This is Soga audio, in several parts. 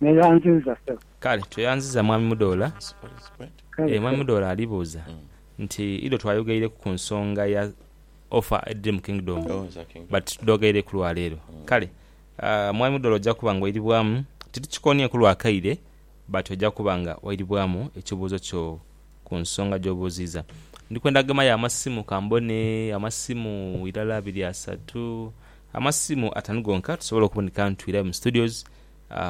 Neyanziza sebo. Kale tweyanziza Mwami Mudoola. Eeh Mwami Mudoola ali buuza nti idho twayogaireku ku nsonga ya offer edhiri mu Kingdom but tidhogaireku lwa leero. Kale Mwami Mudoola oja kuba nga oiribwamu, titukikonieku lwa kaire but oja kuba nga oiribwamu ekibuuzo kyo ku nsonga gy'obuuziiza. Ndi kwenda gemayo amasimu ka mbone, amasimu irala, abiri, asatu, amasimu atanu gonka tusobole okuboneka nitwirayo mu studios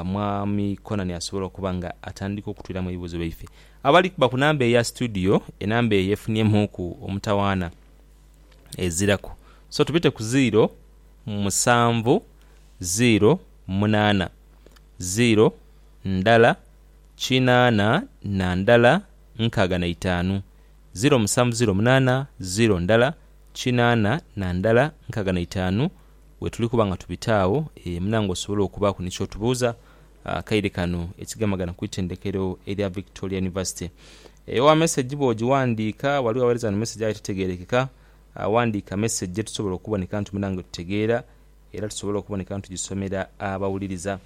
Mwami Conani asobola okuba nga atandika okutwiramu ebibuuzo byaife. Abali kuba ku namba eya situdiyo, enamba eyo efuniemuuku omutawaana eziraku. So tubite ku ziiro musanvu ziiro munaana ziiro ndala kinaana na ndala nkaaga na itaanu. Ziiro musanvu ziiro munaana ziiro ndala kinaana na ndala nkaaga na itaanu Wetuli kuba nga tubita agho, munange osobole okubaaku ni ky'otubuuza akaire kano ekigemagana ku itendekero erya Victoria University. Owa mesegi bw'ogiwandiika, waliwo aweereza ni mesegi aye tetegeerekeka, wandiika mesegi ye tusobola okuboneka nti munange tutegeera era tusobole okuboneka nti tugisomera abawuliriza.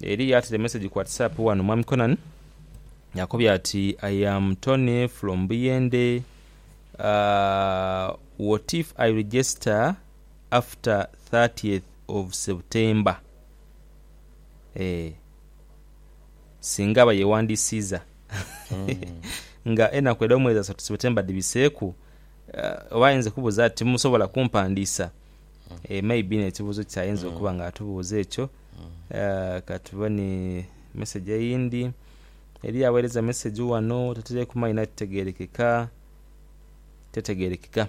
Eriyo ataire mesegi ku Whatsapp ghano, Mwami Conan akobye ati, I am Tony from Buyende, what if I register? after thirtieth of September eeh singa aba yewandisiiza nga enaku edh'omwezi asatu September dhibiseeku oba ayinza okubuuza ati musobola kumpandiisa? eeh maybe n'ekibuuzo kye ayinza okuba nga atubuuza ekyo. Katubone message eyindhi, eriyo aghereza message ghano, tataireku maina titegerekeka, tetegerekeka.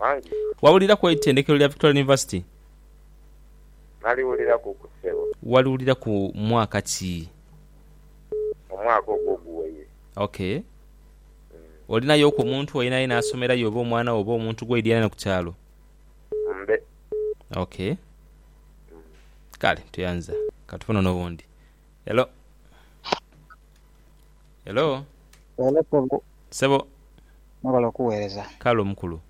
Anti. Wawulira ku eitendekero lya Victoria University? Naliwuliraku ku ssebo. Waliwuliraku mwaka ki? Omwaka ogwo oguwaire. Ok. Olinayoku omuntu ayenaayena asomerayo oba omwana wo oba omuntu gwoidhianana ku kyalo? Mbe. Ok. Kale tuyanza. Katufune ono owundi. Hello. Hello. Hello sebo. Sebo. Mwebale okuwereza. Kale omukulu.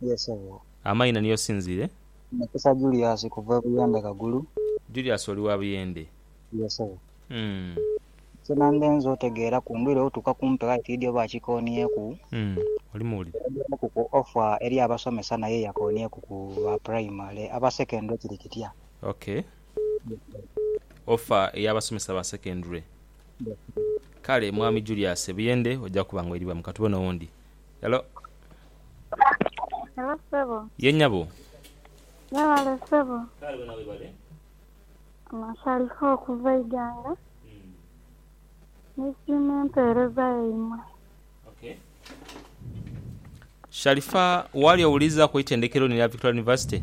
Yee sebo. Amaina ni yosinzire? Mukisa Julius kuva e Buyende Kagulu. Julius oli wa Buyende? Yee sebo. Uhmm. Nze nange nze otegeera ku ndhwire otuuka kumpi aye tidhi oba akikonieku. Uhmm oli muwulire. Oyogerwaku ku offer eri abasomesa naye yakonieku ku ba primary. Aba secondary kiri kitya? Okay. Yee sebo. Offer eya basomesa ba secondary. Kale mwami Julius ebuyende oja kuba nga oiribamu katubone owundi. Hello. Hello sebo. Ye nyabo. Yebale sebo. Kale wena webale. Ono Shalifah okuva Iganga. Nisiima empeereza yaimwe. Ok. Shalifah wali owulirizaku eitendekero lino erya Victoria University?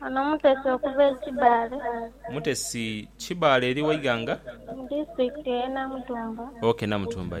Ono mutesi okuva e Kibaale. Mutesi Kibaale eri wa ighanga? Mu disitulikiti eye Namutumba. Ok Namutumba.